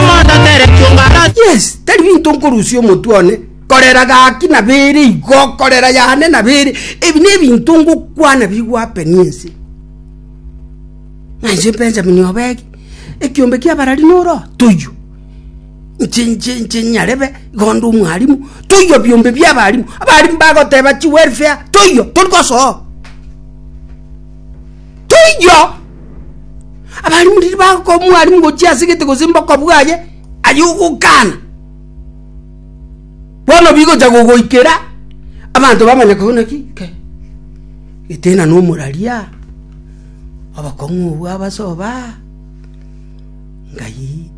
Moto tere chung'ara. Yes, tari binto nkorusia omotwe one, korera gaki nabere igo, korera yane nabere, ebi nebinto ngokwana bigwapenia ense. Nainche Benjamin Obegi, ekiombe kia abarari noro, toiyo. Nche nche nche nyarebe, igo nde omwarimu, toiyo biombe bia abarimu, abarimu bagoteba chi welfare, toiyo, tori gosoa oo. Toiyo! Abalimu riria bagoka omwalimu gochia ase egete gose mboko bwaye, aye ogokana. Bono bigocha gogoikera abanto bamanye koigwa naki ke gete nano omoraria obokong'u obwo abasoba ngai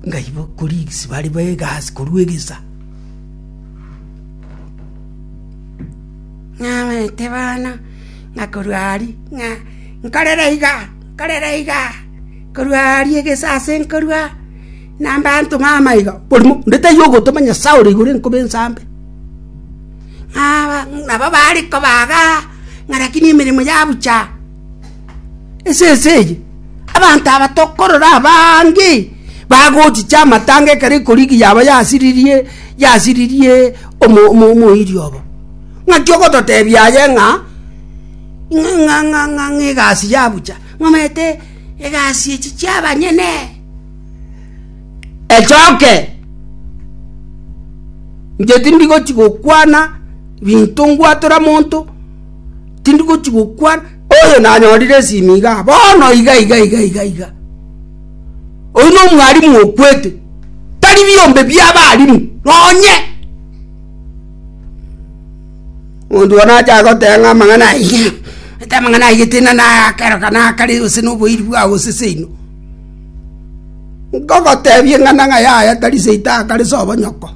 ngai bokorigisi bare be egasi korwa egesa. Ng'amete bana. na korwa aria, ng'a, Nkorere iga, nkorere iga. Korwa aria egesaasi nkorua, na abanto baama iga, Oborimo onde taiyo ogotoma Nyasae ore igoro enkobe ensambe. Nabo baare kobaga, ng'a rakini emeremo yabucha. Esese eye, abanto aba tokorora abange bagochicha amatanga ekero ekorigia yabo yasiririe, yasiririe omoiri obo. Ng'aki ogototebia aye ng'a egasi ya bucha? Ng'omanyete egasi echi chi'abanyene? Echoke, inche tindi gochi gokwana binto ngwatora monto, tindi gochi gokwana, oyo nanyorire esimi iga bono iga iga iga iga iga. Oyio na omwalimu okwete, tari biombe bia abalimu nonye. Monto one ache agoteba ng'a amang'ana aye, gete amang'ana aye tina naya akero kana akare gose noboiri bwao gose seino. Ngogotebie ng'ana ng'a yaya tari seito akare sobo nyoko.